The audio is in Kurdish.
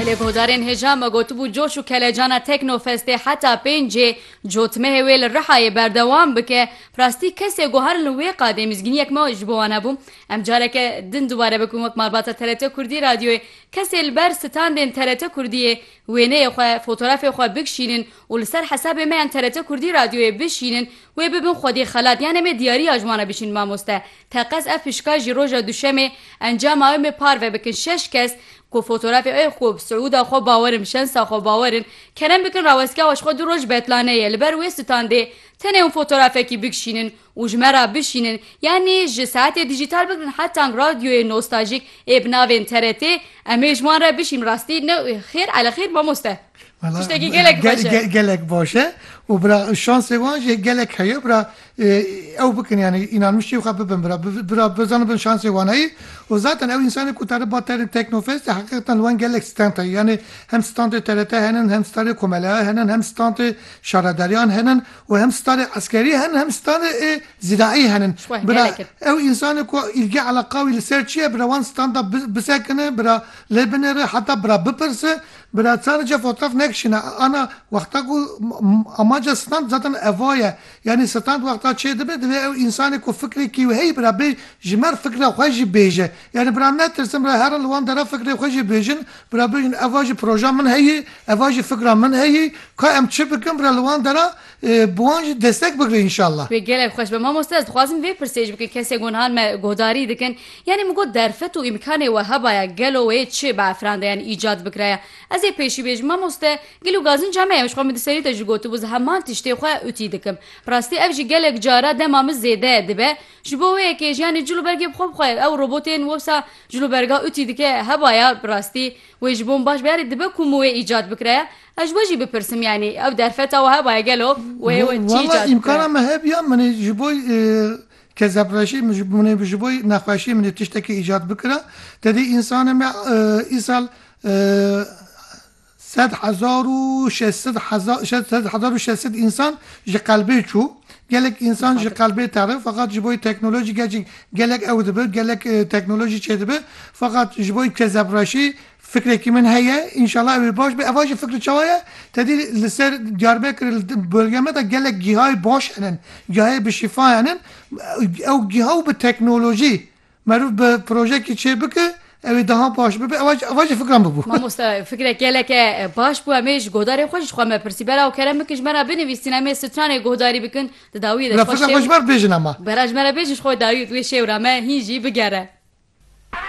Li guhdarên hêja me gotibû coş û kelecana Teknofestê heta pêncê cotmehê wê li Rihayê berdewam bike, bi rastî kesê ku herin li wê qadê mizgîniyek me ji bo wan hebû, em careke din dubare bikin wek malbata TRT Kurdî Radyoyê, kesê li ber standên TRT Kurdiyê wêneyê xwe, fotorafê xwe bikşînin, û li ser hesabê me yan TRT Kurdî Radyoyê bişînin wê bibin xwedî xelat yan em ê diyariya ji wan re bişînin mamoste teqez ev pişka jî roja duşemê encama ew mê parve bikin şeş kes ku fotorafê ew ku bi siûda xwe bawer in bi şensa xwe bawer in kerem bikin rawestgeha ji xwe du roj betlaneyê li ber wê standê tenê hûn fotorafekî bikşînin û ji me re bişînin yanî ji saetê dîjîtal bigrin hetank radyoyê nostajîk ê bi navên TRT em ê ji wan re bişîn rastî ne xêr ele xêr mamoste. Tiştekî gelek baş e. Gelek baş e û bira şansê wan jî gelek heye bira ew bikin yanî înanmiştiyê xwe bibin bira bira bizanibin şansê wan heye û zaten ew însanê ku tade ba terê teknofestê heqîqetan li wan gelek stand heye yanî hem standê TRT henin hem standê komeleya henin hem standê şaredariyan henin We hem stanê eskerî henin hem stanê ê zîraî henin. Bira ew însanê ku îlge eleqa wî li ser çi ye bira wan stan da bisekine bira lê binêre heta bira bipirse bira çar ca fotoğraf nekişîne ana wexta ku amaca stand zaten eva ye yanî stand wexta çêdibe divê ew însanê ku fikrê kî wê heyî bira bê ji mer fikra xwe jî bêje. Yanî bira netirsin, bira herin li wan dera fikrê xwe jî bêjin, bira bêjin eva jî proja min heyî, eva jî fikra min heyî, ka em çi bikin bira li wan dera bi wan jî destek bigre înşallah. Wê gelek xweş be. Mamoste ez dixwazim vê pirsê ji bikim kesên ku nihan me guhdarî dikin. Yanî min got derfet û îmkanê we hebaya gelo wê çi bi efran de yanî îcat bikiraya. Ez ê pêşî bêjim mamoste gelo gazinca me ye ji xwe min di serî de jî gotibû ez heman tiştê xwe utî dikim. Bi rastî ev jî gelek cara dema min zêde dibe Ji bo wê yekê jiyanê cil û bergê bi xwe bixwe. Ew robotên wewsa cil û berga utî dike hebaya bi rastî wê ji bo min baş be yanî dibe ku min wê îcat bikiraya. Ez ji we jî bipirsim yanî ew derfeta we hebaya gelo wê wê çi îcat bikiraya? Wala îmkana me hebiya min ê ji bo kezepreşê min min ê ji bo nexweşiyê min ê tiştekî îcat bikira. Tedê însanê me îsal Sed hezar û şeş sed hezar sed hezar û şeş sed însan ji qelbê çû. Gelek însan ji qelbê teri feqat ji boî teknolojî gerçek gelek ew dibi gelek teknolojî çêdibi feqat ji boî kezebreşî fikrekî min heye înşala ew ê baş be eva jî fikri çawa ye tedî li ser Diyarbekir li bölge me de gelek gîhayê baş henin gîhayê bi şîfa henin ew gîha û bi teknolojî Merûv bi projekî çê bike ew ê daha baş bibe ew a ew a jî fikran bibû. Mamoste fikre geleke baş bû em ê ji godarên xwe jî ji xwe me pirsî bera û kerem bikin ji me re binivîsîn em ê stranê godarî bikin di dawiyê de ji xwe şêw bera ji me re bêjin ji xwe dawiyê di wê şêw re me hîn jî bigere.